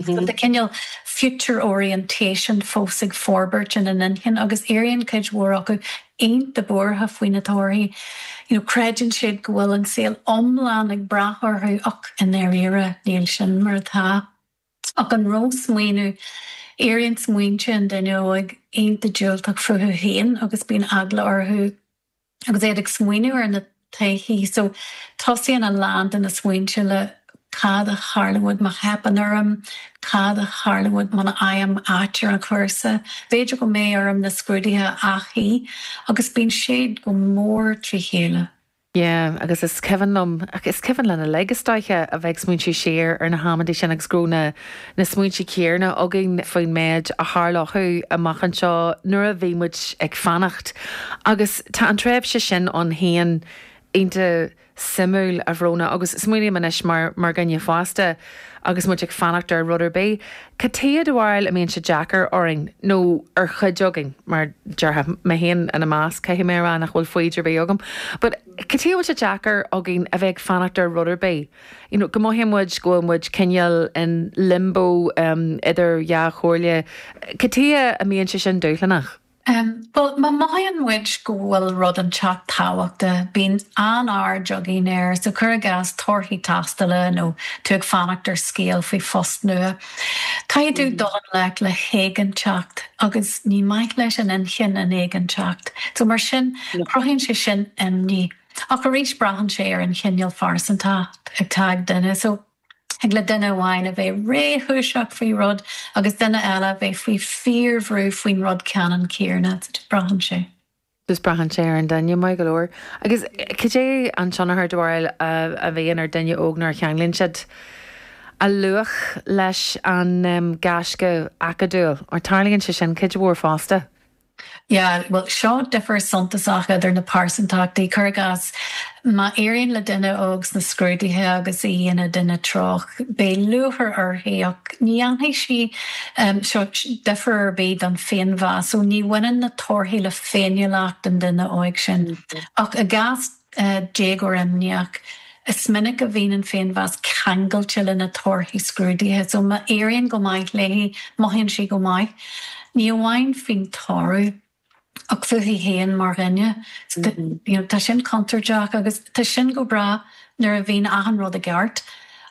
Tá an cineál future orientation fós ag forbairt ina n-inchinn agus éiríonn cuid mhór acu iontach buartha faoi na torthaí. You know, creideann siad go bhfuil an saol iomlán ag brath orthu ach i ndáiríre níl sin mar atá. Ach an ró-smaoineamh, éiríonn smaointe an duine óig iontach diúltach fúthu féin agus bíonn eagla orthu. Agus iad ag smaoineamh ar na torthaí so, tosaíonn a lán de na smaointe le Cad a tharlóidh má theipeann orm? Cad a tharlóidh muna bhfaighim áit ar an chúrsa? B'fhéidir go mbeidh orm na scrúduithe a athshuí? Agus bíonn siad go mór trí chéile. Yeah, agus is cuimhin liom, is cuimhin le na laigs istigh, a bheith ag smaointiú siar ar na hamanntaí sin agus go raibh na. na smaointe céanna againn faoin méid a tharlódh amach anseo nuair a bhí muid ag fanacht. Agus tá an tréimhse sin ann féin iontach suimiúil, a Bhróna, agus smaoinim anois mar dhuine fásta agus muid ag fanacht ar rud ar bith, cad é do bharúil a mbíonn sé deacair orainn, nó ar chuid againn, mar a déarfá, mé féin ina measc, caithfidh mé a rá nach bhfuil foighid ar bith agam, but cad chuige a bhfuil sé deacair againn a bheith ag fanacht ar rud ar bith? You know, go mothaíonn muid go bhfuil muid cineál in limbo idir dhá chomhairle. Cad chuige a mbíonn sé sin dúshlánach? Bhuel, má mhothaíonn muid go bhfuil rud inteacht tábhachtach, bíonn an-aird againn air. So cuir i gcás torthaí tástála nó tú ag fanacht ar scéal faoi phost nua. Caithfidh tú dul i ngleic le héiginnteacht agus ní maith leis an inchinn an éiginnteacht. So mar sin, cruthaíonn sé sin imní. Ach arís, braitheann sé ar an chineál pearsantacht atá ag duine so thig le duine amháin a bheith réchúiseach faoi rud agus duine eile a bheith faoi fíorbhrú faoin rud ceannann céanna. Braitheann sé. Just braitheann sé ar an duine, maith go leor. Agus cad é an tionchar, do bharúil, a bhíonn ar dhuine óg nuair a cheanglaíonn siad a luach leis an gaisce acadúil? Mar tarlaíonn sé sin cuid mhór fosta. Yeah, bhuel, seo difear suntasach idir na pearsantachtaí. Cuir i gcás, má éiríonn le duine óg sna scrúduithe agus í ina duine stuama, beidh lúchair uirthi ach ní dhéanfaidh sí seo difear ar bith don féinmheas, so ní bhaineann na torthaí le féiniúlacht an duine óig sin. Ach i gcás. déagóir imníoch. Is minic a bhíonn an féinmheas ceangailte leis na torthaí scrúdaithe so má éiríonn go maith léi, mothaíonn sí go maith, ní amháin faoin toradh ach fúithi féin mar dhuine. So you know tá sin contúirteach agus tá sin go breá nuair a bhíonn achan rud i gceart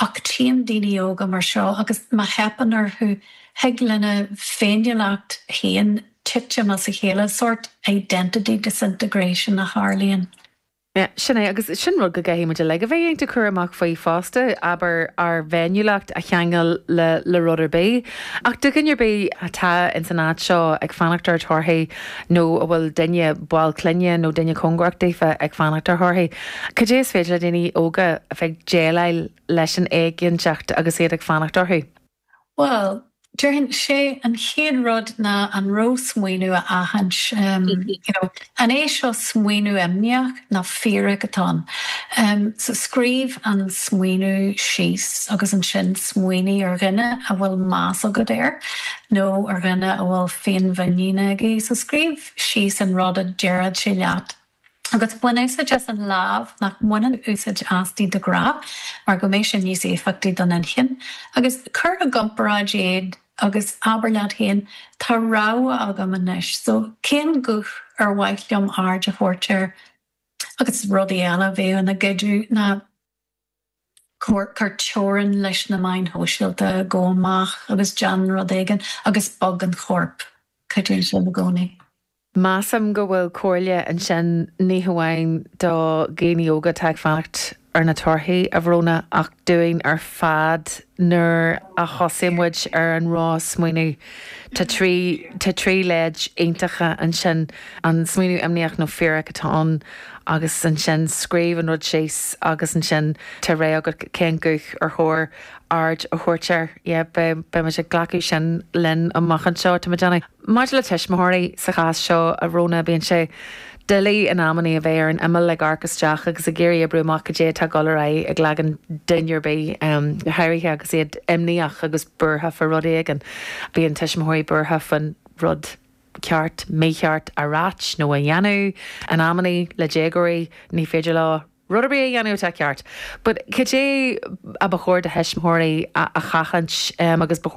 ach tchím daoine óga mar seo agus má theipeann orthu, thig lena féiniúlacht féin titim as a chéile, sórt identity disintegration a tharlaíonn. Sin é, agus sin rud go gcaithfidh muid uilig a bheith ar an eolas faoi fosta, abair, ár bhféiniúlacht a cheangal le rud ar bith. Ach do dhuine ar bith atá ins an áit seo ag fanacht ar thorthaí nó a bhfuil duine, ball clainne nó duine cóngarach daofa ag fanacht ar thorthaí, cad é is féidir le daoine óga a bheith le déileáil leis an éiginnteacht agus iad ag fanacht orthu? Bhuel, déarfainn, sé an chéad rud ná an ró-smaoineamh a aithint, you know, an é seo smaoineamh imníoch nó fíorach atá ann? So scríobh an smaoineamh síos agus ansin smaoinigh ar dhuine a bhfuil meas agat air nó ar dhuine a bhfuil féinmhuinín aige, so scríobh síos an rud a déarfadh sé leat. agus bain úsáid as an lámh nach mbaineann úsáid asti de ghnáth mar go mbeidh sé níos éifeachtaí don inchinn, agus cuir i gcomparáid iad agus abair leat féin, tá rogha agam anois so cén guth ar mhaith liom aird a thabhairt air? Agus rudaí eile a bhíodh ina gcuidiú ná. Cuir teorainn leis na meáin shóisialta, gabh amach agus déan rud éigin agus bog an corp, cuidíonn sé i gcónaí. Measaim go bhfuil comhairle ansin ní hamháin do dhaoine óga atá ag fanacht ar na torthaí, a Bhróna, ach dúinn ar fad. Nuair a thosaigh muid ar an ró-smaoineamh, tá trí, tá trí leid iontacha ansin, an smaoineamh imníoch nó fíorach atá ann agus ansin scríobh an rud síos agus ansin tá rogha agat cén guth ar chóir aird a thabhairt air. Yeah, beidh, beidh muid ag glacadh sin linn amach anseo, tá muid ann. Maidir le tuismitheoirí sa chás seo, a Bhróna, bíonn sé doiligh in amannaí a bheith ar an imeall ag amharc isteach agus ag iarraidh oibriú amach cad é atá ag dul ar aghaidh i gcloigeann duine ar bith, go háirithe agus iad imníoch agus buartha fá rud éigin. Bíonn tuismitheoirí buartha faoin rud ceart, mícheart a ráit nó a dhéanamh. In amannaí, le déagóirí, ní féidir leo rud ar bith a dhéanamh atá ceart. But cad é a ba chóir do thuismitheoirí a sheachaint agus ba chóir.